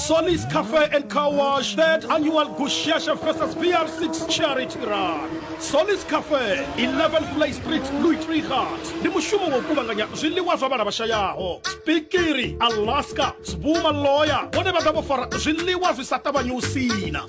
Sonny's Cafe and Car Wash, third annual Gushasha Festas PR6 Charity Run. Sonny's Cafe, 11 Play Street, Louis Trichardt. Ndi mushumo wa u kuvhanganya zwiḽiwa zwa vhana vhashayaho. Spikiri, Alaska, Sbuma Lawyer, vhone vha ḓa vho fara zwiḽiwa zwi sa ṱavhanyi u sina.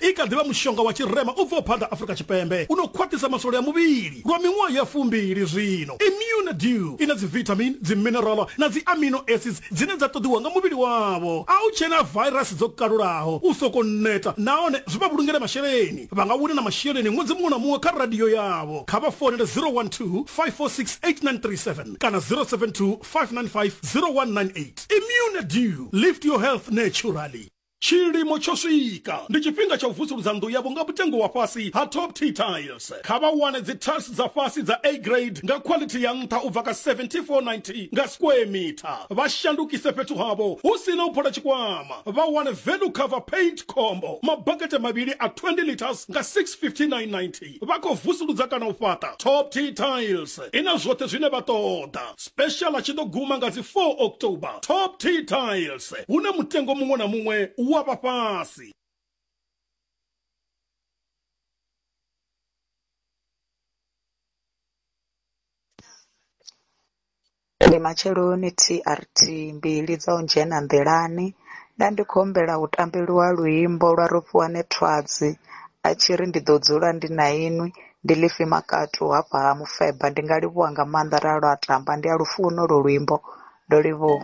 i kha ḓivha mushonga wa tshirema u bvaho phanḓa Afrika Tshipembe u no khwaṱhisa maswole a muvhili lwa miṅwaha ya fumbili zwino. Immune Dew i na dzivithamini, dziminerala na dzi amino acids dzine dza ṱoḓiwa nga muvhili wavho. A u tshena vairasi dzo kalulaho, u sokou neta nahone zwi vha vhulungele masheleni. Vha nga wina na masheleni ṅwedzi muṅwe na muṅwe kha radio yavho. Kha vha founele 012-546-8937 kana 072-595-0198. Immune Dew, lift your health naturally. Tshilimo tsho swika, ndi tshifhinga tsha u vusuludza nnḓu yavho nga mutengo wa fhasi ha Top T Tiles. Kha vha wane dzi tiles dza fhasi dza A grade nga quality ya nṱha u bva kha 7490 nga square meter. Vha shandukise fhethu havho hu si na u phola tshikwama. Vha wane value cover paint combo, mabakete mavhili a 20 litres nga 65990. vha khou vusuludza kana u fhaṱa top t tiles i na zwoṱhe zwine vha ṱoḓa special a tshi ḓo guma nga dzi 4 october top t tiles hune mutengo muṅwe na muṅwe u wa vha fhasi Ndi matsheloni TRT mbili dza u dzhena nḓilani nda ndi khou humbela hu tambeliwa luimbo lwa Rofhiwane Thwadzi a tshi ri ndi ḓo dzula ndi na inwi ndi ḽifhi makatu hafha ha mufeba ndi nga livhuwa nga maanḓa ra lwa tamba ndi a lufuna holwo luimbo ndo livhuwa.